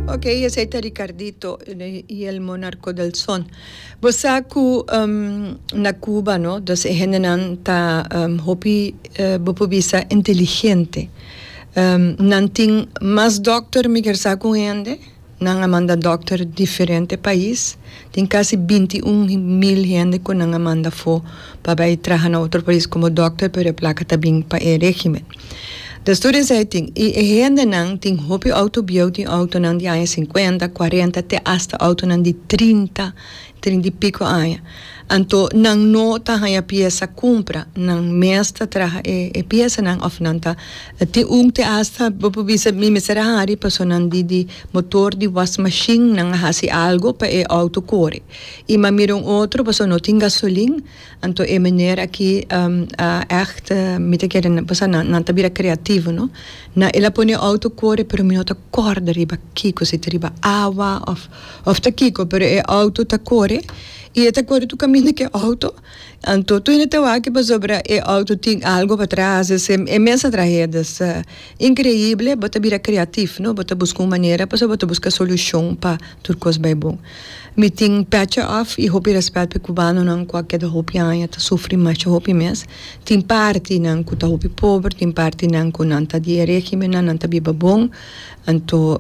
Ok, esei ta Ricardito i el monarco del son. Bo sa cu na Cuba no, dus e hendenan ta hopi, bo por bisa inteligente. Nan tin mas dokter migrsa cu un hende, nan a manda dokter diferente pais. Tin kasi binti un mil hende ku nan a manda afó pa bai traha na otro pais komo dòkter pero e plaka ta bin pa e régimen. De storia esei tin. I e hendenan tin hopi outo bieu, tin outonan di aña sinkuenta, kuarenta te asta outonan di trinta, trinta i piko aña. Anto nan no ta haña piesa kumpra, nan mes ta traha e piesanan òf nan ta E tin un te asta bo por bisa mi mester a hari personan di di motor di was mashin nan a hasi algo pa e outo kore i mi a mira un otro pasobra no tin gasolin anto e meneer aki a echt mi ta kere pasobra nan nan ta bira creativo no na el a pone e outo kore pero mi no ta korda riba kiko si ta riba awa of of ta kiko pero e outo ta kore i e ta kore tur kaminda ku e outo. Anto Tony ta wak pasobra e auto tin algo patras esei e mes a trahe dus ta increible bo ta bira creatif no bo ta busca un manera pasobra bo ta busca solucion pa tur cos bay bon mi tin pecha off y hopi respet pa e cubanonan cu a keda hopi aña ta sufri masha hopi mes tin partinan cu ta hopi pober tin partinan cu nan ta di e regimennan nan ta biba bon. Anto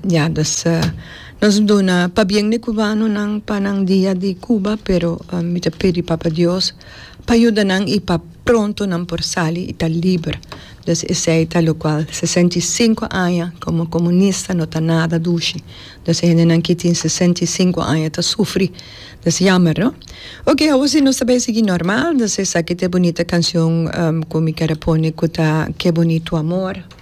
ya dus nos duna pabien di cubanonan pa nan dia di Cuba pero mi ta pidi Papa Dios pa yuda nan y pa pronto nan por sali y ta liber dus esey ta locual sesenta y cinco aña como comunista no ta nada dushi dus e hendenan ki tin sesenta y cinco aña ta sufri dus yamer no. Ok awo si nos ta bay sigui normal dus esaki ta e bunita cancion cu mi ker a pone cu ta Ke Bonito Amor.